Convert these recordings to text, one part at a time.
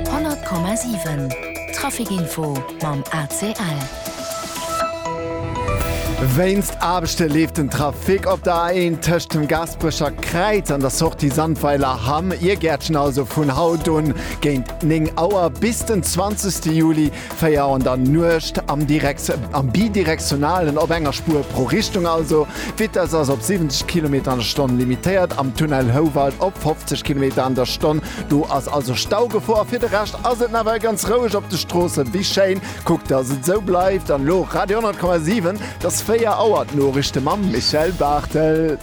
100,7 Traficinfo mam ACL. Wéinst Aarbechte leeft den Trafic op der A1 tëscht dem Gaasperecher Kräiz an der Sortie Sandweiler Hamm, Ier Gäertchen, also vun haut un géint 9 Auer bis den 20. Juli 4 an der Nuecht am direkt am bidirektionalen op enger Spuer pro Richtung also. D'Vitess ass op 70 Kilometer an der Stonn limitéiert am Tunnel Houwald op 50 Kilometer an der Stonn. Do ass also Staugefor. Fir de Rescht ass et nawell ganz roueg op de Stroossen. Wéi schéin! Kuckt dass et esou bleift an elo Radio 100,7. Et ass 4 Auer. D'Noriichte mam Michèle Barthel.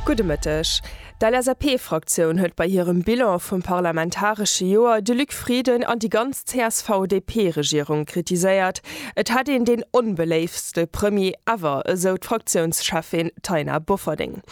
Gudde Mëtteg. D'LSAP-Fraktioun huet bei hirem Bilan vum parlamentaresche Joer de Luc Frieden an déi ganz CSV-DP-Regierung kritiséiert. Et hätt een deen onbeléiftste Premier ever, esou d'Fraktiounscheffin Taina Bofferding.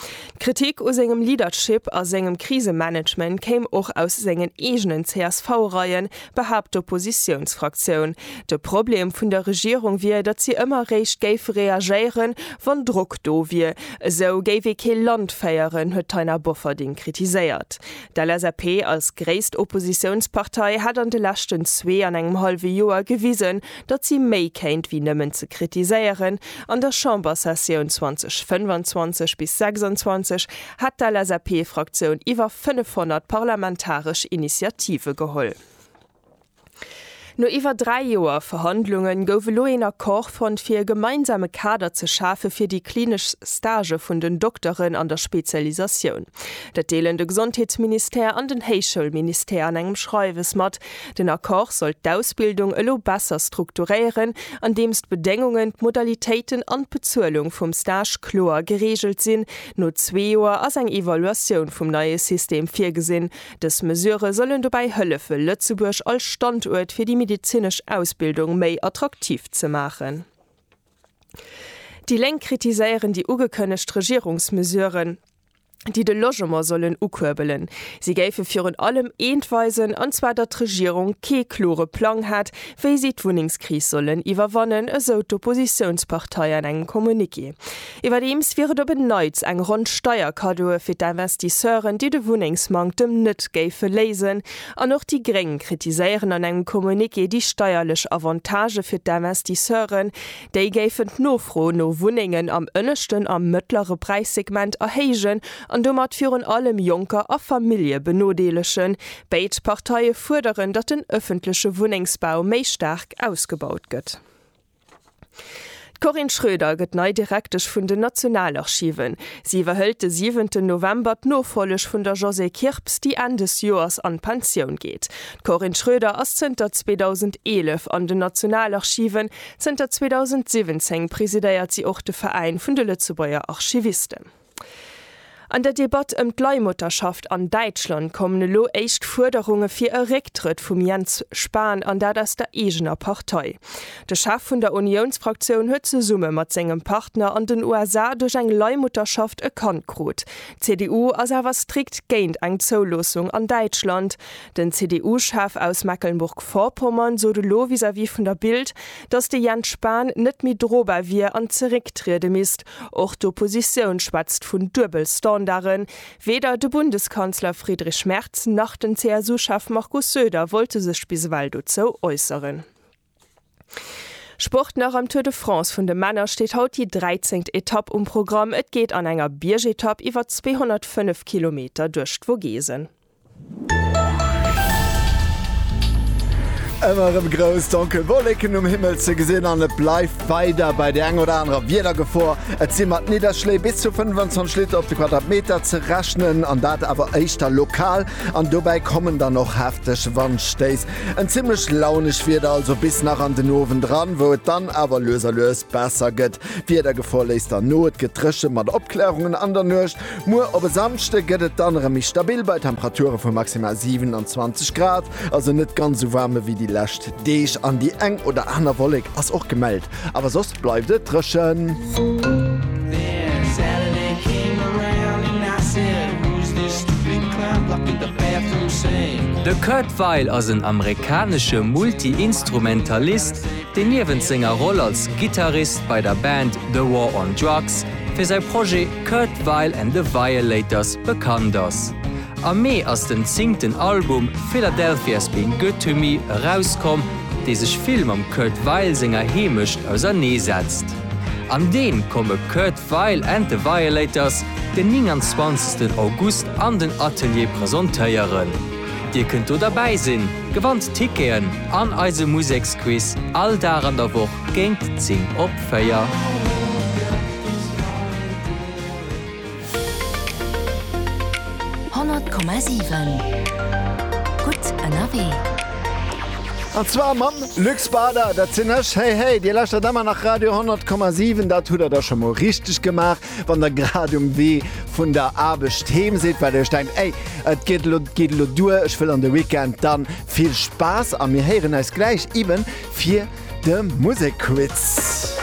D'Kritik u sengem Leadership a sengem Krisemanagement kéim och aus sengen eegenen CSV-Reien, behaapt d'Oppositiounsfraktioun. De Problem vun der Regierung wier, datt si ëmmer eréischt géif reagéieren, wann Drock do wier. Esou géif ee kee Land féieren, huet d'Taina Bofferding kritiséiert. D'LSAP als gréisst Oppositiounspartei hätt an de leschten zwee an engem hallwe Joer gewisen, datt si méi kéint wéi nëmmen ze kritiséieren. An der Chambersessioun 2025 bis 26 hätt d'LSAP-Fraktioun iwwer 500 parlamentaresch Initiative geholl. No iwwer dräi Joer Verhandlunge gouf elo een Accord fonnt, fir e gemeinsame Kader ze schafe fir déi klinesch Stagë vun den Dokteren an der Spezialisatioun. Dat deelen de Gesondheetsministère an den Héichschoulministère an engem Schreiwes mat. Den Accord soll d'Ausbildung elo besser strukturéieren, andeems d'Bedéngungen, d'Modalitéiten an d'Bezuelung vum Stage kloer gereegelt sinn. No zwee Joer ass eng Evaluatioun vum neie System virgesinn. Dës Mesurë sollen dobäi hëllefe Lëtzebuerg als Standuert fir déi medezinesch Ausbildung méi attraktiv ze maachen. Déi Lénk kritiséieren déi ugekënnegt Regierungsmesuren, déi de Logement sollen ukuerbelen. Si géife virun allem eent weisen, an zwar datt d'Regierung kee klore Plang hätt, wéi si d'Wunnengskris sollen iwwerwannen, esou d'Oppositiounspartei an engem Communiqué. Iwwerdeems wier et op en Neits eng Ronn Steierkaddoe fir d'Investisseuren, déi de Wunnengsmanktem net géife léisen. An och déi Gréng kritiséieren an engem Communiqué déi steierlech Avantagë fir d'Investisseuren. Déi géifen d'Nofro no Wunnengen am ënneschten a mëttlere Präissegment erhéijen an domat virun allem Jonker a Famillje benodeelegen. Béid Parteie fuerderen, datt den ëffentleche Wunnengsbau méi staark ausgebaut gëtt. D'Corinne Schroeder gëtt nei Direktesch vun den Nationalarchiven. Si iwwerhëlt de siwenten November d'Nofolleg vun der Josée Kirps, déi Enn des Joers an d'Pensioun geet. D'Corinne Schroeder ass zënter 2011 an den Nationalarchiven. Zënter 2017 presidéiert si och de Veräin vun de Lëtzebuerger Archivisten. An der Debatt ëm d'Leihmutterschaft an Däitschland kommen elo éischt Fuerderunge fir e Récktrëtt vum Jens Spahn, an dat aus der eegener Partei. De Chef vun der Uniounsfraktioun huet zesumme mat sengem Partner an den USA duerch eng Leihmutterschaft e Kand krut. D'CDU ass awer strikt géint eng Zouloossung an Däitschland. Den CDU-Chef aus Mecklenburg-Vorpommern sot elo vis-à-vis vun der Bild, datt de Jens Spahn net méi drobar wier an zerécktriede misst, Och d'Oppositioun schwätzt vun Duebelstandarden. Weder de Bundeskanzler Friedrich Merz nach den CSU-Chef Markus Söder wollte sech bis ewell dozou äusseren. Sport nach, Am Tour de France vun de Männer steet haut déi dräizengt Etapp um Programm. Et geet an enger Biergetapp iwwer 205 Kilometer duerch d'Vogesen. Ëmmer erëm grouss donkel Wolleken um Himmel ze gesinn an et bleift weider bei der enger oder anerer Wiedergefor. Et si mat Nidderschléi bis zu 25 Liter op de Quadratmeter ze rechnen an dat awer éischter lokal. An dobäi kommen dann och hefteg Wandstéiss. En zimmlech launeg Wieder also bis nach an den Owend eran, wou et dann awer lues a lues besser gëtt. D'Wiedergefor léisst dann no, et gëtt dréche mat Opklaerungen an der Nuecht. Muer op e Samschde gëtt et dann erëm méi stabil bei Temperature vu maximal 27 Grad, also net ganz esou waarm ewéi déi lescht Deeg an déi eng oder aner Wollek ass och gemellt, awer soss bleift et dréchen. De Kurt Weill ass en amerikanesche Multi-Instrumentalist, deen niewent senger Roll als Gittarist bei der Band The War on Drugs, fir säi Projet Kurt Weill and the Violators bekannt ass. Am Mee ass den zingten Album Philadelphia's Been Good to Me erauskomm, dee sech vill mam Kurt Weill senger Heemecht ausernee setzt. An deem komme Kurt Weill and the Violators den 29 August an den Atelier presentéieren. Dir kënnt do derbäi sinn, gewannt Ticketen an eise Museksquiz all Dag an der Woch Géint 10 op 4. Honnert Komma siwen, gutt ënnerwee. An zwar mam Luc Bader, dat sinn ech. Hey, hey, Dir lauschtert ëmmer nach Radio 10 Komma 7. Dat hutt Der da scho mol richteg gemaach, wann Der grad um Wee vun der Aarbecht heem sidd, well Dir lech denkt, Ey, et geet elo, geet elo duer, ech wëll an de Weekend, dann Vill Spaass a mir héieren eis gläich eben fir de Musekquiz.